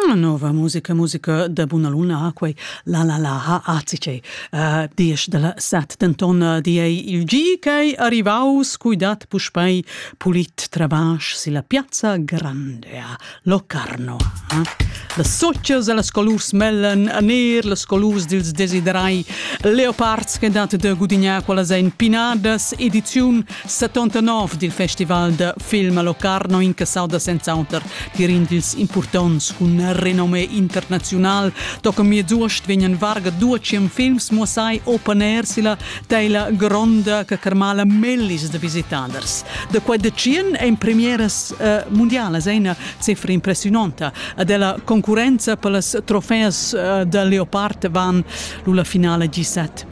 Una nova musica, musica da buna luna ha quei la la la ha azice. Uh, diesch dalla set denton uh, di ei il gi ch'ei arrivaus cui dat puspei pulit trabasch silla piazza grande a Locarno. Eh? Las socias e las colurs mellen a ner, las colurs dils desiderai leopards che dat de gudignar quella ein pinadas ediziun 79 dil festival da film a Locarno incassau da senz'auter tier in dils impurtonts cun renome internaziunal. Toca miez'uost vegnan varga 200 films muossai open air silla teila gronda che carmala mellis da visitaders. Da quei de tschien ein premieras uh, mundialas ein una cifra impressionanta ad ella concurenza per las trofeas uh, da Leopard van lulla finale G7.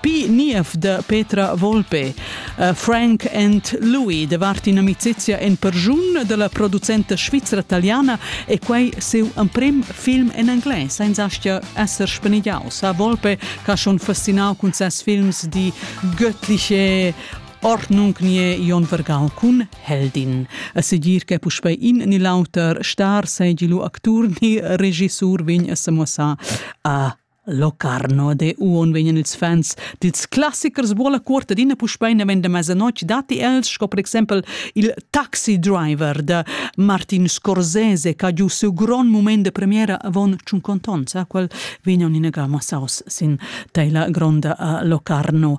Pi niev de Petra Volpe, uh, Frank and Louis davart in'amicizia en pergiun della producenta svizra-italiana e quei siu emprem film en anglais, senza aschia esser spenigliaus. A Volpe ha schon fascinau cun ses films die göttliche Ordnung nie Ion Vergal cun Heldin. A segir che puspei in ni l'auter star seigi lu actur ni regissur vegn a semuossar a Locarno de uonn vegnan ils fans dils classichers buolla cuort adina puspei naven da mezzanotg datti els sco per exempel il Taxi Driver da Martin Scorsese che ha giu siu grond mument de premiera avon tschunconton sa quel vegnan ina ga massaus sin teila gronda a Locarno.